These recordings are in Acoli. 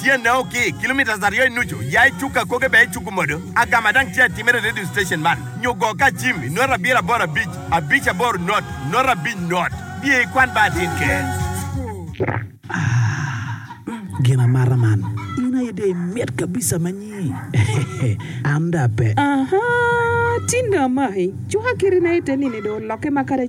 tyene o ki kilometres aryo i nucu ya i cuk akoge bene i cuku modo agama dang tye atimere i radio station man nyo go ka cim i nota abiro aboro abic abic aboro not nota abic not diye i kwan bar din ke. Aah gin amata man in aye dong imit kabisa ma nyi hehehe an dong ape. Ahaa tinda amaki cuka kiri na ite nini dong oloke ma kadi.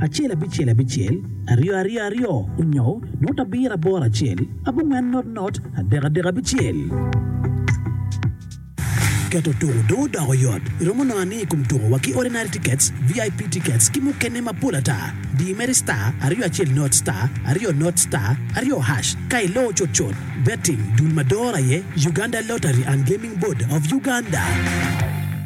Acel abicel abicel, aryo aryo aryo, onyo not abiro aboro acel, abongwen not not, adek adek abicel. Keto tuko dong odoko yot. Iromo nongo aniya i kom tuko wa ki Ordinary Tickets, VIP Tickets ki mukene mapol ata. Di imedi star, aryo acel not, star, aryo not, star, aryo hash ka iloo cut cut. Betting, dul ma doro aye Uganda Lottery and Gaming Board of Uganda.